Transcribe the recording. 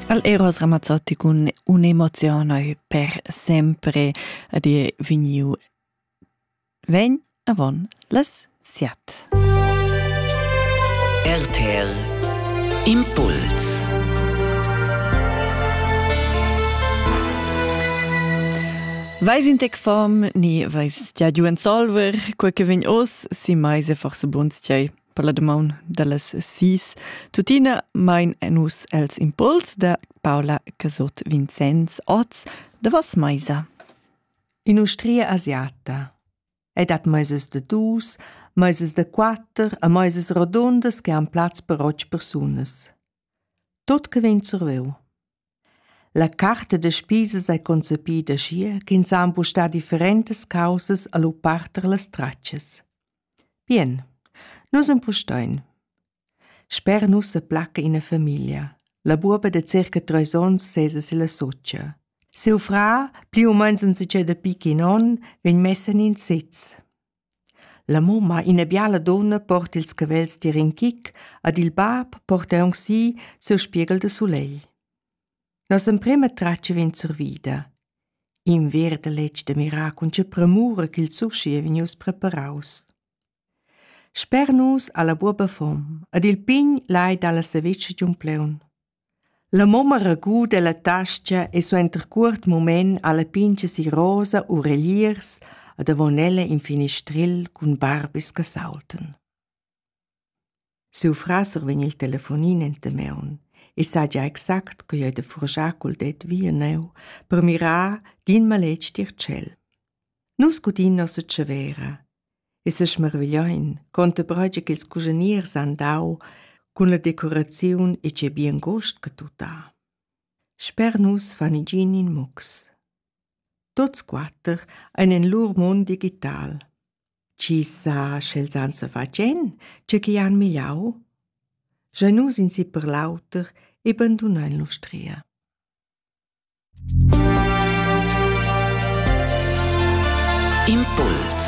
Al Eros Ramazzotti cun un'emozione per sempre ad dir vegniu vegn avon las siat. RTL Impuls Weis in tec fam ni weis tia giu en solver, quei che vegn os si meise forse buns tgei. per la damaun dallas sis. Tuttina mein nus els impuls da Paula Casot Vincenz Oz davos meisa. In'ustria asiata è dat meisas de dus, meisas de quatter a meisas rodondas che han plaz per otg persunas. Tut che vegn surveu. La carta da spisas ei concepida aschia ch'ins ha empustar differentas caussas a lu parter las tratschas. Bien, nus empustein. Sper nus se placca ina famiglia. La buoba de circa treis onns sesa silla socia. Siu frà, pli u meins un succeda picchi in onn, vegn messa in in sitz. La mumma, ina biala dunna, porta ils cavels tier in chic ed il bab porta aunc si siu spieghel de sulegl. Nossa emprema tratga vegn survida. In verd letg de miracul che premura ch'il sushi ei vegnius preparaus. Sper nus ha la buoba fom ed il pign lai dalla savetscha giun pleun. La momma raguda ella tascha e suenter cuort mument alla pintga si rosa u reliers e davon ella in finistril cun barbis che saultan. Siu frasser vegn il telefonin enta meun e sa gia exact co ei da furgiar cul det via neu per mirar d'in maletg tier tschel. Nus gudin nossa tschevera e sesmarvigliain contemprai che quels cuschiniers han dau cun la decoraziun e tgei bien gust che tut ha. Sper nus fan igin in mux. Tuts quatter ein en lur mund digital. Chi sa, sch'els han sa fatgen, tge che han migliau? Jeu nus in si per l'auter e bandunein l'ustria. Impuls